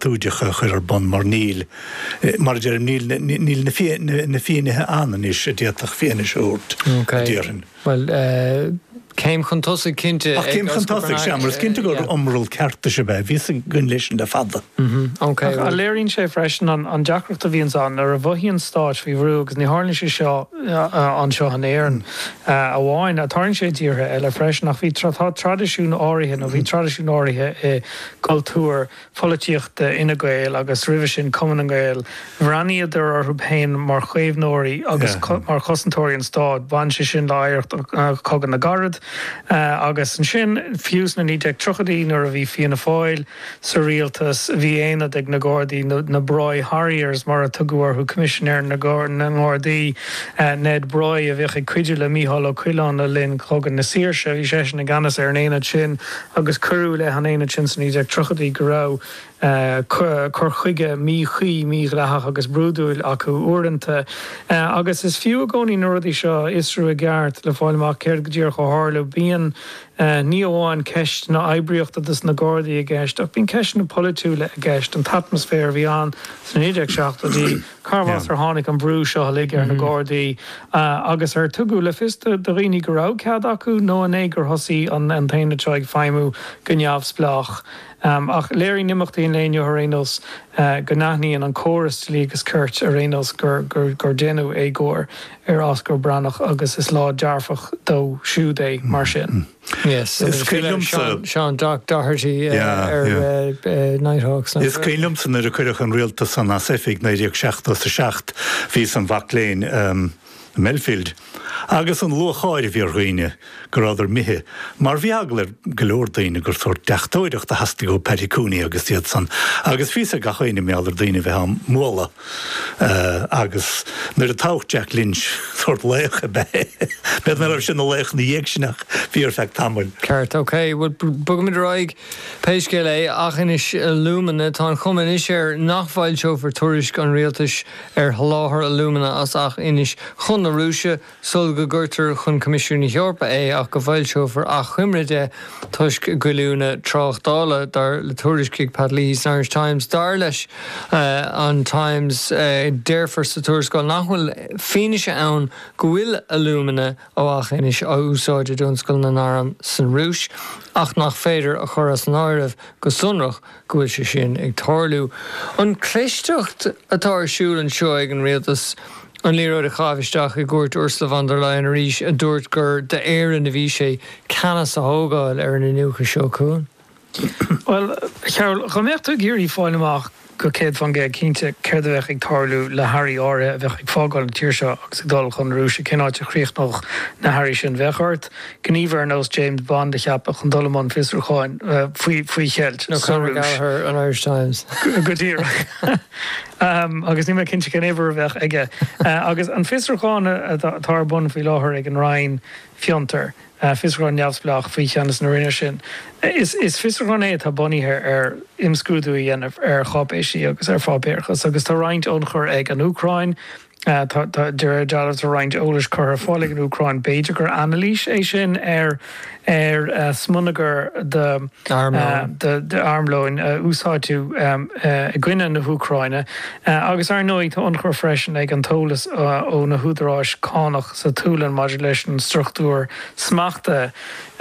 Tuairisc a chur ar bun mar níl, mar a deirim, níl na finnéithe ann anois a d'fhéadfadh fianaise a thabhairt, a déarfainn. Bhuel, céim chun tosaigh cinnte. Ach céim chun tosaigh, sea, mar is cinnte gur iomrall ceartais ab ea a bhíos againn leis sin le fada. Ach léiríonn sé freisin an deacracht a bhíonns ann nuair a mhothaíonn stáit faoi bhrú agus ní tharlaíonn sé seo anseo in Éirinn amháin, tarlaíonn sé i dtíortha eile freisin, ach bhí, tá traidisiún áirithe nó bhí traidisiún áirithe i gcultúr. pholaitíochta Fhine Gael agus roimhe sin Cumann na nGael, bhreathnaíodar orthu féin mar chaomhnóirí agus mar chosantóirí an stáit. Bhain sé sin le hoidhreacht Chogadh na gCarad agus ansin fiú sna 1930idí nuair a bhí Fianna Fáil sa rialtas bhí aonad ag na Gardaí, na Broy Harriers mar a tugadh orthu. Coimisinéir na nGardaí, Ned Broy, a bhíodh ag cuidiú le Mícheál Ó Coileáin le linn Chogadh na Saoirse, bhí seisean i gceannas ar an aonad sin. agus cuireadh i leith an aonaid sin sna 1930idí go raibh cur chuige míchuí, mídhleathach agus brúidiúil acu uaireanta. Agus is fiú i gcónaí na rudaí seo a fhiosrú i gceart le fáil amach céard go díreach a tharla. Bíonn ní amháin ceisteanna oibríochta dos na Gardaí i gceist ach bíonn ceisteanna polaitiúla i gceist, an t-atmaisféar a bhí ann sna 1970idí, Carbh as ar tháinig an brú seo uilig ar na Gardaí agus ar tugadh le fios do dhaoine go raibh cead acu nó an é gur thosaigh an t-aonad seo ag feidhmiú go neamhspleách? Ach léiríonn imeachtaí an lae inniu ar aon nós go n-aithníonn an córas dlí agus cirt ar aon nós gur deineadh éagóir ar Osgur Breatnach agus is lá dearfach dó siúd é mar sin. Is cuimhin liomsa. Seán Doherty ar Nighthawks. Is cuimhin liomsa nuair a cuireadh an rialtas san as oifig 1977, bhíos i mo mhac léinn i mBelfield, agus an lúcháir a bhí ar dhaoine go rabhadar imithe, mar bhí eagla ar go leor daoine gur sórt deachtóireacht a theastaigh ó Paddy Cooney agus iad san, agus bhí a fhios ag gach aoinne i mBelfield daoine a bheith á mbualadh. Agus nuair a toghadh Jack Lynch, sórt laoch ab ea é. B'fhéidir nach raibh sé ina laoch ina dhiaidh sin ach bhí ar feadh tamaill. Ceart, ok. Bhuel, bogaimid ar aghaidh pé scéal é. Ach anois, Alumina. Tá an chuma anois air nach bhfoilseofar tuairisc an rialtais ar sholáthar alumina as Eachinis chun na Rúise. sul go gcuirtear chun Coimisiún na hEorpa é ach go bhfoilseofar achoimre de toisc goilliúnacht tráchtála, dar le tuairisc ag Pat Leahy san Irish Times. Dar leis an Times, déarfar sa tuarascáil nach bhfuil fianaise ann go bhfuil alúmana ó Eachinis á úsáid i dtionscal na n-arm san Rúis ach nach féidir a chur as an áireamh go sonrach go bhfuil sé sin ag tarlú. An chlisteacht atá ar siúl anseo ag an Rialtas an liathróid a chaitheamh isteach i gcúirt Ursula von der Leyen arís a dúirt gur d'Éirinn a bhí sé ceannas a thógáil ar an iniúchadh seo chun cinn. Bhuel, a Chearbhaill, dá mbeadh tú ag iarraidh fáil amach go céad faoin gcéad cinnte céard a bheadh ag tarlú le hearraí áirithe a bheadh ag fágáil an tír seo agus ag dul chun na Rúise, cén áit a chríochnódh na hearraí sin, bheadh ort gníomhaire ar nós James Bond a cheapadh chun dul i mbun fiosrúcháin faoi cheilt sa Rúis. Go díreach. Agus níl mé cinnte cén uimhir a bheadh aige. Agus an fiosrúchán atá ar bun faoi láthair ag an Roinn Fiontar, fiosrúchán neamhspleách faoi cheannas na Roinne sin, is fiosrúchán é atá bunaithe ar imscrúdú a dhéanamh ar cháipéisí agus ar pháipéarachas. Agus tá roinnt ionchuir ag an Úcráin, Tá, de réir dealraimh, tá roinnt eolais curtha ar fáil ag an Úcráin. B'fhéidir gur anailís é sin ar smionagar d'armlón a úsáideadh i gcoinne na hÚcráine. Agus, ar ndóigh, tá ionchur freisin ag an eolas ó na húdaráis cánach sa tSualainn maidir leis an struchtúr smachta.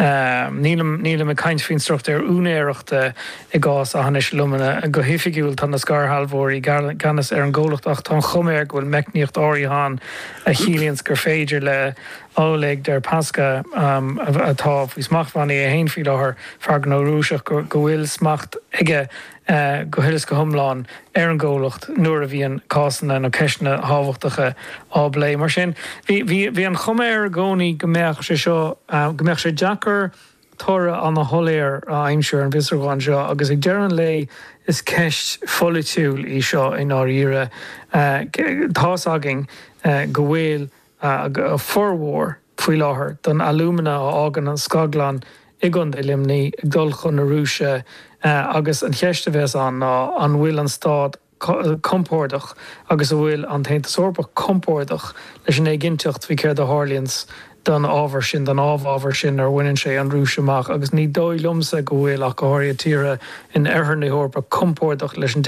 Nílim ag caint faoin struchtúr úinéireachta. I gcás Aughinish Alumina, go hoifigiúil tá na scairshealbhóirí i gceannas ar an gcomhlacht ach tá an chuma air go bhfuil meicníocht áirithe ann a chiallaíonns gur féidir le Oleg Deripaska, atá faoi smachtbhannaí é féin faoi láthair, fear gnó Rúiseach, go bhfuil smacht aige go huile is go hiomlán ar an gcomhlacht nuair a bhíonn cásanna nó ceisteanna tábhachtacha á bplé. Mar sin, bhí an chuma air i gcónaí go mbeadh sé seo, go mbeadh sé deacair, toradh an-soiléir a aimsiú ar an bhfiosrúchán seo agus ag deireadh an lae is ceist pholaitiúil í seo i ndáiríre. Tá's againn go bhfuil formhór faoi láthair don alumina a fhágann an scaglann i gContae Luimnigh ag dul chun na Rúise agus an cheist a bheas ann ná an bhfuil an Stát compordach agus an bhfuil an tAontas Eorpach compordach leis an éiginnteacht faoi céard a tharlaíonns don ábhar sin, don amhábhar sin, nuair a bhaineann sé an Rúis amach, agus ní dóigh liomsa go bhfuil ach go háirithe tíortha in oirthear na hEorpa compordach leis an